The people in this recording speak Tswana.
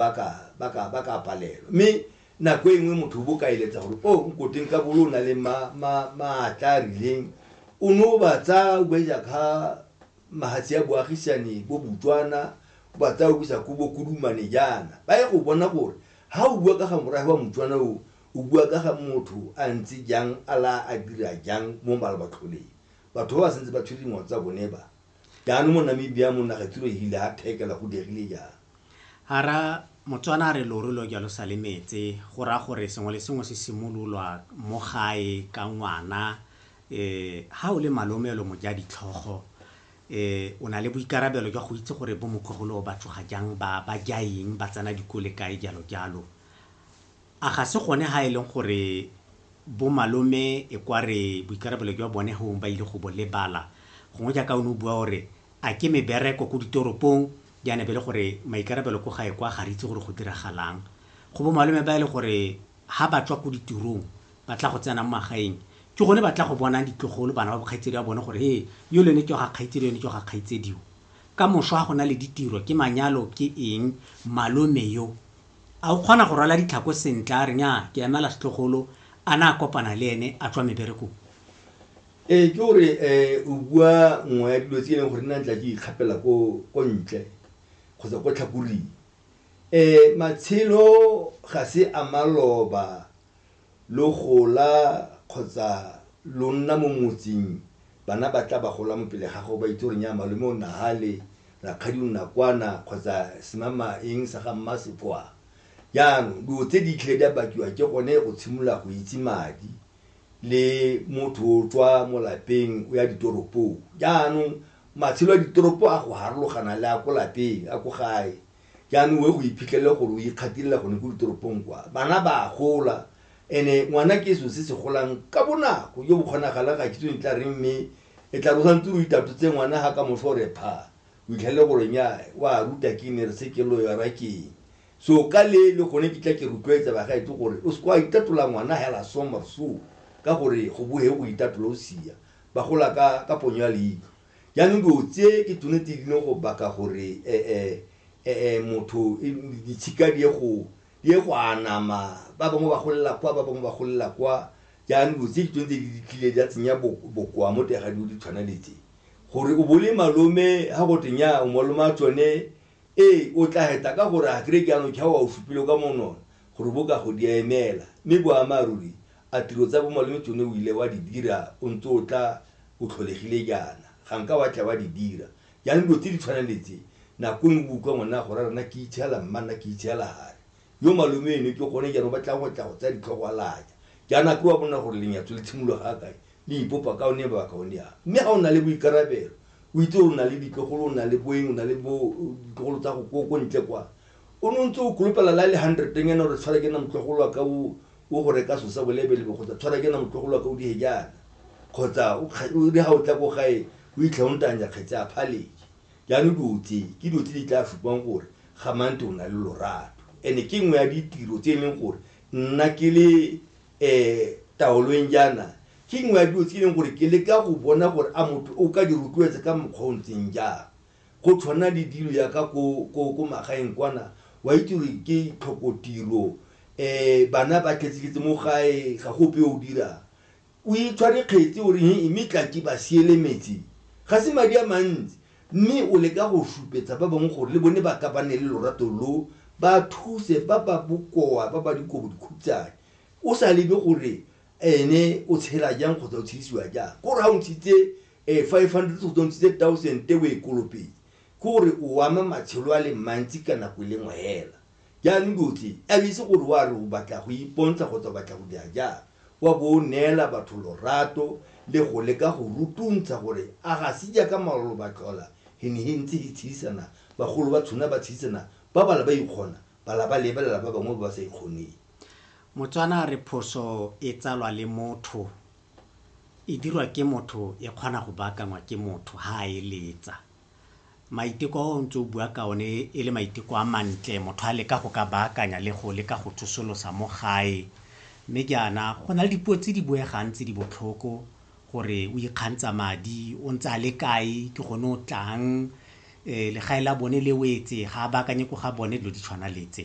ba ka ba ka ba ka palelwa mme nako e nngwe motho o bo ka eletsa gore o nkoteng ka bolo o na le ma- ma- maatla a rileng o ne o ba tsaya o ba isa ka mahatshe ya boagisane bo botswana o ba tsaya o bisa ko bokodumane jaana ba ye go bona gore ha o bua ka ga morafe wa motswana o o bua ka ga motho a ntse jang a la a dira jang mo malabatlholeng batho ba ba sentse ba tshwere dingwao tsa bone ba Jaanong mo Namibia mo naga tiro e ile a thekela go diegile jang? Hara Motswana a re loru lo jalo sa le metse, go raya gore sengwe le sengwe se simololwa mo gae ka ngwana. Um ha o le malome o le mojaditlhogo um o na le boikarabelo jwa go itse gore bo motlogolo ba tsoga jang, ba ba ja eng, ba tsena dikole kae, jalo jalo. A ga se gone ha e leng gore bo malome e kwa re boikarabelo jwa bone hong ba ile go bo lebala? Gongwe jaaka o ne o bua o re a ke mebereko ko ditoropong jaana e be le gore maikarabelo ko gae kwa ga re itse gore go diragalang. Go bo malome ba e le gore ha ba tswa ko ditirong ba tla go tsena mo magaeng ke gone ba tla go bonang ditlogolo, bana ba bo kgaitsedi ba bone gore he yole ne ke wa ga kgaitsedi yone ke wa ga kgaitsedi yo. Ka moso ha go na le ditiro, ke manyalo ke eng, malome yo, A o kgona go rwala ditlhako sentle? A re, Nnyaa, ke emela setlogolo a na a kopana le ene a tswa meberekong. Ee, ke gore o bua nngwe ya dilo tse e leng gore nna ntla ke ikgapela ko ko ntle kgotsa ko tlhakoring. Matshelo ga se a maloba Lo gola kgotsa lo nna mo motseng, bana ba tla ba gola mo pele ga gago ba itse gore nnyaa malome o nna hale, rakgadi o nna kwana kgotsa semama eng sa ga mma se kwa. Jaanong dilo tse di tlhe di a bakiwa ke gone go tshimolola go itse madi le motho o tswa mo lapeng o ya ditoropong. Jaanong matshelo a ditoropo a go harologana le a ko lapeng a ko gae. jaanong o e go iphitlhelele gore o ikgatilela gone ko ditoropong kwa bana ba gola ene ngwana ke selo se se golang ka bonako jo bo kgonagalang ga kitso e tla reng mme e tla rosa ntse o itato tse ngwana ga ka moso re pha o itlhelele gore nya wa ruta ke ne re se ke lo yara keng so ka le le gone ke tla ke rotloetsa bagaetse gore o seke wa itatola ngwana hela sommer so ka gore go bohe go itatola o sia ba gola ka ka ponyo ya leitlho Jaanong dilo tse ke tsone tse di leng go baka gore motho ditshika di ye go di ye go anama, ba bangwe ba golela kwa, ba bangwe ba golela kwa, jaanong dilo tse ke tsone tse di tlile di a tsenya bokoa mo teng ga dilo di tshwana le tse. Gore o bo le malome ga go twe nnyaa o malome wa tsone, ee o tla heta ka gore a kry-e jaanong ke ga o a o supile ka monwana gore bo kago di a emela, mme boammaaruri A tiro tsa bo malome tsone o ile wa di dira o ntse o tla o tlholegile jaana? Ga nka wa tla wa di dira. Jaanong dilo tse di tshwanang le tse, nako nngwe o bo o utlwa ngwana a go raya gore nna ke itshegela mma, nna ke itshegela hare. Yo malome eno ke gone jaanong o batlang go tla go tsaya ditlhogo a laya. Jaanong a ke wa bona gore lenyatso le tshimologa ga kae? Le ipopa ka one mabaka one a. Mme ga o na le boikarabelo, o itse gore o na le ditlogolo, o na le boeng, o na le bo ditlogolo tsa go ko ko ntle kwa, O ne o ntse o kolopela la le hundredeng ena gore tshwara ke na motlogolo wa ka o o go reka so sa bolebelebe kgotsa tshwara ke na motlogolo wa ka o dihe jaana kgotsa o kga- o re ga o tla ko gae o itlha o ntanya kgetse a phaleke jaanong dilo tse ke dilo tse di tla supang gore ga mante o na le lorato ene ke nngwe ya ditiro tse e leng gore nna ke le um taolong jaana ke nngwe ya dilo tse e leng gore ke leka go bona gore a motho o ka di rotloetsa ka mokgwa o o ntseng jang Go tshwana le dilo yaka ko ko ko magaeng kwana wa itse gore ke tlhokotiro bana ba tletsetletse mo gae ga go ope o dirang o itshware kgetse o re he mme tla ke ba siele metsi ga se madi a mantsi mme o leka go supetsa ba bangwe gore le bone ba ka ba ne le lorato lo ba thuse ba ba bokoa ba ba dikobodikhutshane o sa lebe gore ene o tshela jang kgotsa o tshedisiwa jang ko re ga o ntshitse um eh, five hundred kgotsa o ntshitse thousand te o e kolopetse ke gore o ama matshelo a le mantsi ka nako e le ngwe hela jaanong dotse a o itse gore wa re o batla go ipontsha kgotsa o batla go dira jang wa bo o neela batho lorato le go leka go rutuntsha gore a ga se jaaka malolo ba tlhola he ne he ntse he tshedisana bagolo ba tshona ba tshedisana ba bala ba ikgona ba la ba lebelela ba bangwe ba ba sa ikgoneng Motswana a re phoso e tsalwa le motho, e dirwa ke motho e kgona go baakangwa ke motho ha a eletsa. Maiteko a o ntse o bua ka one e le maiteko a mantle, motho a leka go ka baakanya le go leka go tsosolosa mo gae. Mme jaana go na le dipuo tse di buegang tse di botlhoko gore o ikgantsha madi, o ntse a le kae, ke gone o tlang, legae la bone le wetse, ga a baakanye ko ga bone, dilo di tshwana le tse.